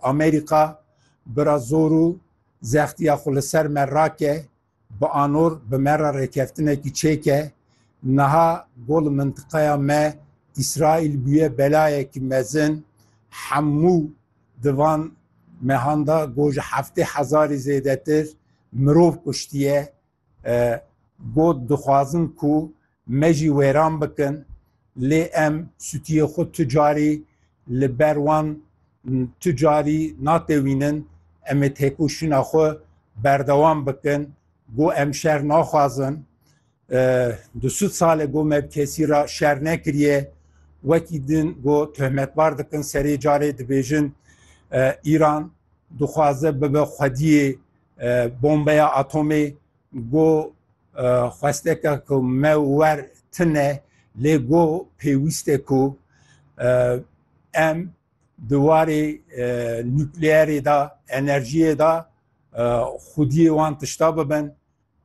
Amerîka bira zor û zextiya xwe li ser me rake, bi anor bi me re rêkeftinekî çêke, niha got li mintiqeya me Îsraîl bûye belayekî mezin, hemû di van mehan de got ji heftê hezarî zêdetir mirov kuştiye, Got, Dixwazin ku me jî wêran bikin lê em sûtiyê xwe tu carî li ber wan tu carî natewînin, em ê têkoşîna xwe berdewam bikin. Got, Em şer naxwazin. Du sed sal e got me bi kesî re şer nekiriye. Wekî din got tohmetbar dikin serê carê dibêjin Îran dixwaze bibe xwediyê Bombeya atomê go xwesteke ku me wer tine lê go pêwîste ku em di warê nukleerê de, enerjiyê de xwediyê wan tişta bibin.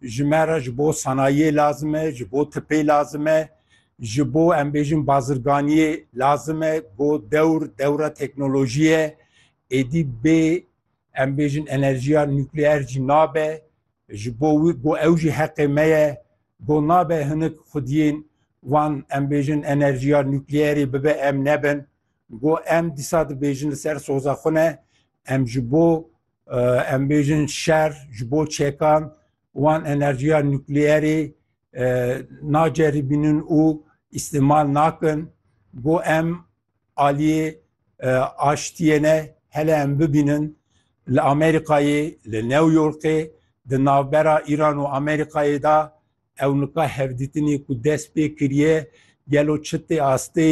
Ji me re ji bo sanayiyê lazim e, ji bo tipê lazim e, ji bo em bêjin bazirganiyê lazim e go dewr dewra teknolojiyê ye. Êdî bê Em bêjin enerjiya nukleer jî nabe ji bo wî got ew jî heqê me ye. Got nabe hinek xwediyên wan em bêjin enerjiya nukleerê bibe em nebin. Got em dîsa dibêjin li ser soza xwe ne em ji bo em bêjin şer ji bo çekan wan enerjiya nukleerê naceribînin û îstîmal nakin. Got em Aliyê aştiyê ne hele em bibînin li Amerîkayê, li New Yorkê, di navbera Îran û Amerîkayê de ew nika hevdîtinê ku dest pê kiriye gelo çi tê astê,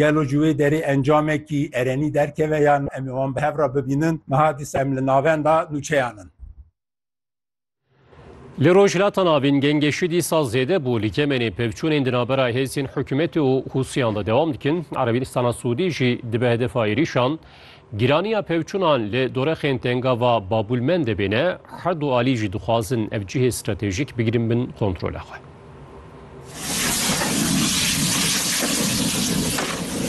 gelo ji wê derê encamekî erenî derkeve yan em ê wan bi hev re bibînin. Niha dîsa em li navenda nûçeyan in. Li Rojhilata Navîn gengê şî dîsa zêde bû li Yemenê pevçûnên di navbera hêzên hikûmetê û Hûsiyan de dewam dikin. Erebînistana Sûdî jî dibe hedefa êrîşan. Gîraniya pevçûnan li dorexên tengava Babûlmendê bêne, her du alî jî dixwazin ev cihê stratejîk bigirin bin kontrola xwe.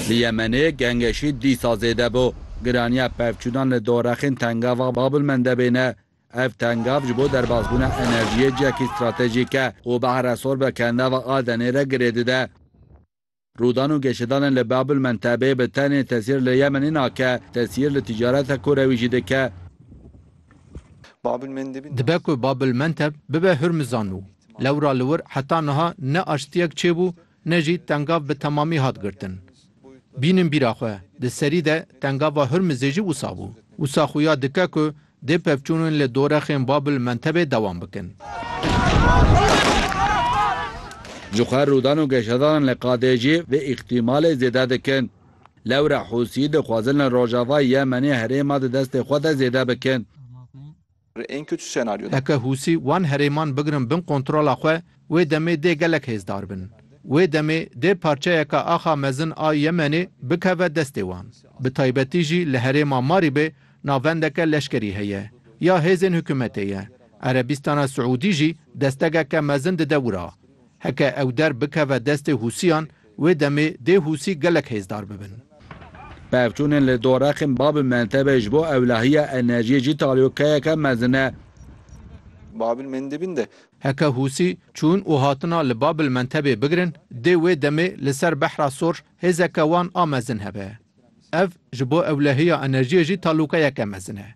Li Yemenê gengê şî dîsa zêde bû. Gîraniya pevçûnan li dorexên tengava Babûlmendê bêne, Ev tengav ji bo derbasbûna enerjiyê cihekî stratejîk e û Behre Sorbe ke nava Adenê re girê dide. Rûdan û geşedanên li Bab el Mentebê bi tenê tesîr li Yemenê nake, tesîr li ticareta kûr re wî jî dike. Dibe ku Bab el Menteb bibe Hurmizan û lewra li wir heta niha ne aştiyek çêbû Ne jî tengav bi temamî hat girtin. Bînin bîra xwe, di serî de tengava Hurmizê jî wisa bû. Wisa xuya dike ku dê pevçûnên li dorexên Bab el Mentebê dewam bikin. Ji xwe rûdan û geşedalan li qadê jî vê îxtîmalê zêde dikin. Lewre Hûsî dixwazin li Rojava Yemenê herêma di destê xwe de zêde bikin. Heke Hûsî wan herêman bigirin bin kontrola xwe, wê demê dê gelek hêzdar bin. Wê demê dê parçeyeke axa mezin a Yemenê bikeve destê wan. Bi taybetî jî li herêma Marîbê navendeke leşkerî heye, ya hêzên hikûmetê ye. Erebîstana Siûdî jî destegeke mezin dide wira. Heke ew der bikeve destê Hûsiyan, Wê demê dê Hûsî gelek hêzdar bibin. Pevçûnên li dorexên Babil Mendebê ji bo ewlahiya enerjiyê jî talyokeyeke mezin e. Babil Mendebin de. Heke Hûsî çûn û hatina li Babil Mendebê bigirin, dê wê demê li ser Behra Sor hêzeke wan a mezin hebe. Ev ji bo ewlahiya enerjiyê jî talyokeyeke mezin e.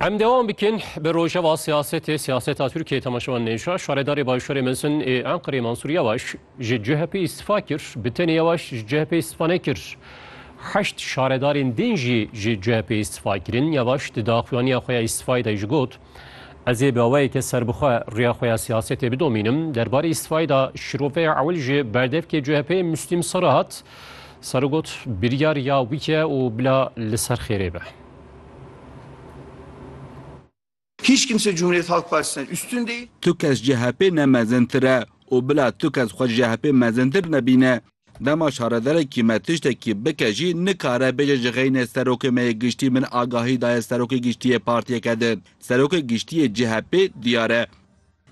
Em devam bikin bi rojeva siyasetê siyaseta Tirkiyeyê temaşevan nêşa şaredarê Başûrê Mezin ê Enqerê Mansûr Yewaş ji CHP'ê îstifa kir. Bi tenê Yewaş ji CHP'ê îstifa nekir. Heşt şaredarên din jî ji CHP'ê îstifa kirin. Yewaş di daxuyaniya xwe ya îstifayê de jî got, Ez ê bi awayeke serbixwe rêya xwe ya siyasetê bidomînim. Derbarê îstifayê de şîroveya ewil ji berdevkê CHP'ê Muslîm Serhat, Sero got, Biryar ya wî ye û bila li ser xêrê be. Hiç kimse Cumhuriyet Halk Partisi'nden üstün değil. Tu kes CHP ne mezintir e û bila tu kes xwe ji CHP mezintir nebîne. Dema şaredarekî me tiştekî bike jî nikare bêje ji xeynê Serokê me yê Giştî min agahî daye Serokê Giştî yê partiyeke din. Serokê Giştî yê CHP'ê diyar e.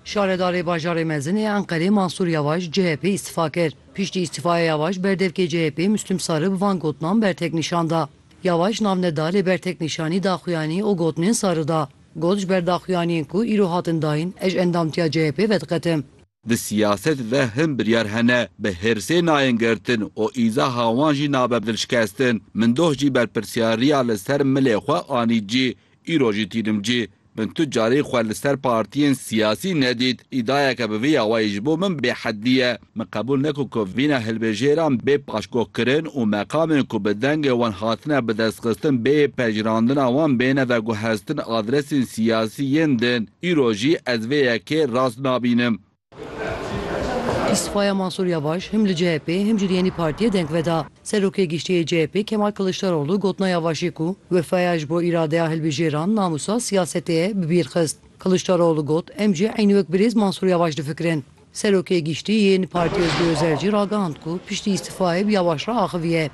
Şaredarê Bajarê Mezin ê Enqerê Mansûr Yawaş chp îstifa kir. Piştî îstîfaya Yawaş berdevkê chp Muslum Sarı bi van gotinan bertek nîşan da. Yawaş nav neda lê bertek nîşanî daxuyanî û gotinên Sarı da. Got ji ber daxuyaniyên ku îro hatin dayîn ez ji endamtiya chp vediqetim. Di siyaset de hin biryar hene bi hêrsê nayên girtin û îzaha wan jî nabe bi dilşikestin. Min doh jî berpirsyariya li ser milê xwe anî cî, îro jî tînim cî. Min tu carî xwe li ser partiyên siyasî nedît. Îdayeke bi vî awayî ji bo min bêheddî ye. Min qebûl neke ku vîna hilbijêran bê paşguhkirin û meqamên ku bi dengê wan hatine bidestxistin bê pejirandina wan bêne veguheztin adresên siyasî yên din. Îro jî ez vê yekê rast nabînim. Îstîfaya Mansûr Yavaş him li CHP'ê him jî li yenî partiyê deng veda. Serokê Giştî yê CHP'ê Kemal Kiliçdaroglu gotina Yavaşê ku wefaya ji bo îradeya hilbijêran namûsa siyasetê ye bi bîr xist. Kiliçdaroglu got, Em jî eynî wek birêz Mansûr Yavaş difikirin. Serokê Giştî yê Partiyê Ozgûr Ozer jî ragihand ku piştî îstîfayê bi Yavaş re axiviye.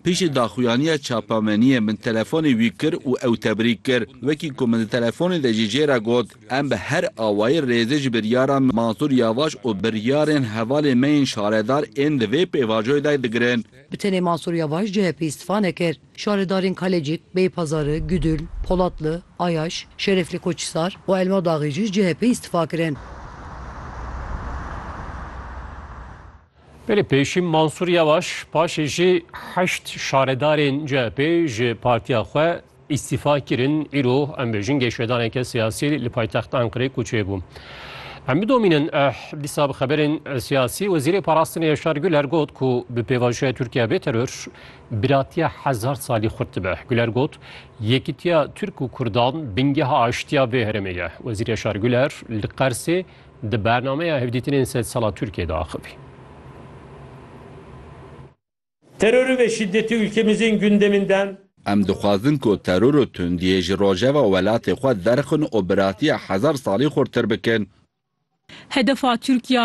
Piştî daxuyaniya çapemeniyê min telefonê wî kir û ew tebrik kir. Wekî ku min di telefonê de jê jê re got, Em bi her awayî rêzê ji biryara Mansûr Yavaş û biryarên hevalên me yên şaredar ên di vê pêvajoyê de digirin. Bi tenê Mansûr Yavaş chp îstifa nekir. Şaredarên Kalecîk, Beypazarê, Gudul, Polatli, Ayaş, Şereflî Koçhisar û Elmadaxî jî ji chp îstifa kirin. Belê pêşî Mansûr Yewaş paşê jî heşt şaredarên CHP'ê ji partiya xwe îstîfa kirin, îro em bêjin geşvedaneke siyasî li paytexta Enqereyê kûçê bû. Em bidomînin eh dîsa bi xeberên siyasî Wezîrê Parastinê Yaşar Guler got ku bi pêvajoya Tirkiye bê teror biratiya hezar salî xurt dibe. Guler got yekîtiya Tirk û Kurdan bingeha aştiya vê herêmê ye. Wezîr Yaşar Guler li Qersê di bernameya hevdîtinên sedsala Tirkiyê de axivî. Terorî ve şîdetî ûlkemizên gundeminden. Em dixwazin ku teror û tundiyê ji rojeva welatê xwe derxin û biratiya hezar salî xurtir bikin. Hedefa Tirkiya